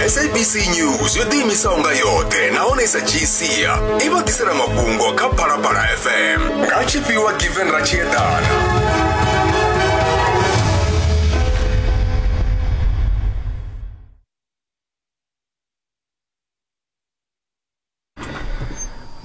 sabc news yo ḓiimisaho nga yoṱhe nahone i sa dzhii sia i vha ḓisela mafhungo kha phalaphala fm nga tshifhiwa given ra tshi eḓana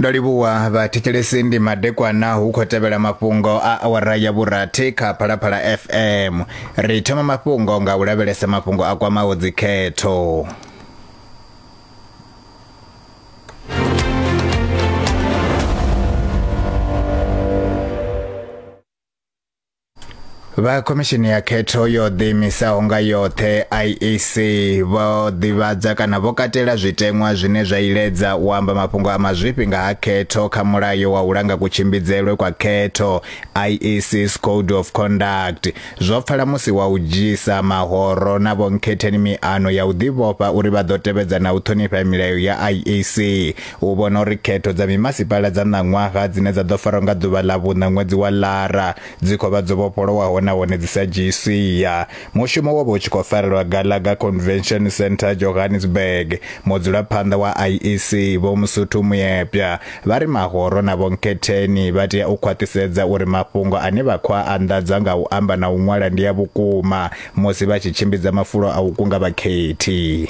ndo livhuwa vhathetshelesi ndi madekwana hu khou tevhela mafhungo a awara ya vhurathi kha phalaphala fm ri thoma mafhungo nga u lavhelesa mafhungo a kwamaho dzikhetho vha khomishini ya khetho yo ḓiimisaho nga yoṱhe IEC vho ḓivhadza kana vho katela zwiteṅwa zwine zwa iledza u amba mafhungo a mazwifhi nga ha khetho kha mulayo wa u langa kutshimbidzelwe kwa khetho IEC's Code of Conduct zwo pfala musi wa u dzhisa mahoro na vhonkhetheni miano ya u ḓivhofha uri vha ḓo tevhedza na u ṱhonifha milayo ya IEC U vhona uri khetho dza mimasipala dza ṋaṅwaha dzine dza ḓo farwa nga ḓuvha ḽa vhuṋa ṅwedzi wa Lara dzi khou vha dzo vhofholowaho nahone dzi sa dzhii sia. Mushumo wo vha u tshi khou farelwa Gallagher Convention Centre, Johannesburg. Mudzulaphanḓa wa IEC, Vho Msuthu Moepya, vha ri mahoro na vhonkhetheni vha tea u khwaṱhisedza uri mafhungo ane vha khou a anḓadza nga u amba na u ṅwala ndi a vhukuma musi vha tshi tshimbidza mafulo a u kunga vhakhethi.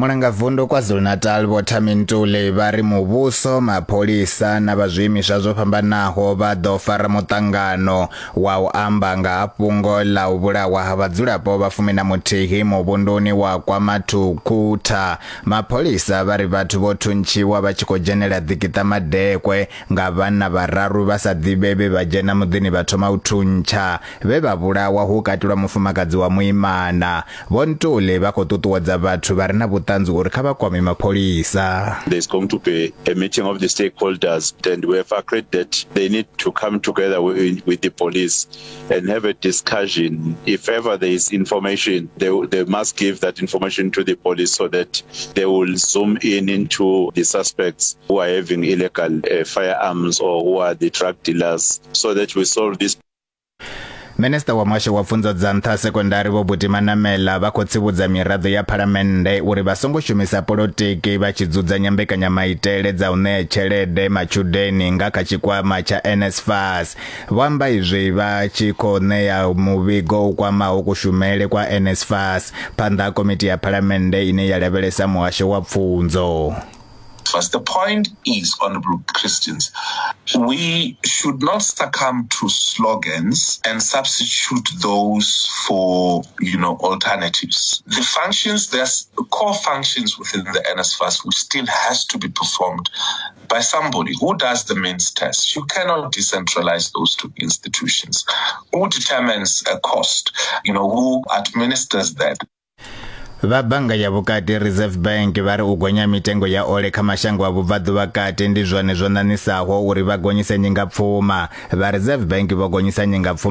mulanga vundu kwazulu-natal vho thamintuli vha ri muvhuso mapholisa na vha zwiimiswa zwo fhambanaho vha ḓo fara muṱangano wa u amba nga ha fhungo ḽa u vhulawa ha vhadzulapo vha fumi na muthihi muvhunduni wa kwamathukutha mapholisa vha ri vhathu vho thuntshiwa vha tshi khou dzhenela ḓikiṱa madekwe Nga vhanna vhararu vha sa ḓivhe vhe vha dzhena muḓini vha thoma u thuntsha, vhe vha vhulawa hu katelwa mufumakadzi wa muimana. Vho Ntuli vha khou ṱuṱuwedza vhathu vha re na vhuṱanzi uri kha vha kwame mapholisa. There's going to be a meeting of the stakeholders and we have agreed that they need to come together with the police and have a discussion. If ever there is information, they, they must give that information to the police so that they will zoom in into the suspects who are having illegal uh, firearms or who are the drug dealers so that we solve this Minister wa Muhasho wa Pfunzo dza Nṱha Sekondari Vho Buti Manamela vha khou tsivhudza miraḓo ya Phalamennde uri vha songo shumisa polotiki vha tshi dzudzanya mbekanyamaitele dza u ṋea tshelede matshudeni nga kha tshikwama tsha NSFAS Vho amba izwi vha tshi khou ṋea muvhigo u kwamaho kushumele kwa NSFAS phanḓa ha komiti ya phalamennde ine ya lavhelesa muhasho wa pfunzo. But the point is, Honorable Christians, we should not succumb to slogans and substitute those for, you know, alternatives. The functions, there's core functions within the NSFAS which still has to be performed by somebody who does the means test. You cannot decentralize those two institutions. Who determines a cost? You know, who administers that? vha bannga ya vhukati reserve bank vha ri u gonya mitengo ya ole kha mashango a vhubvaḓuvha kati ndi zwone zwo ṋaṋisaho uri vha gonyise nyingapfuma vha reserve bank vho gonyisa nyingapfuma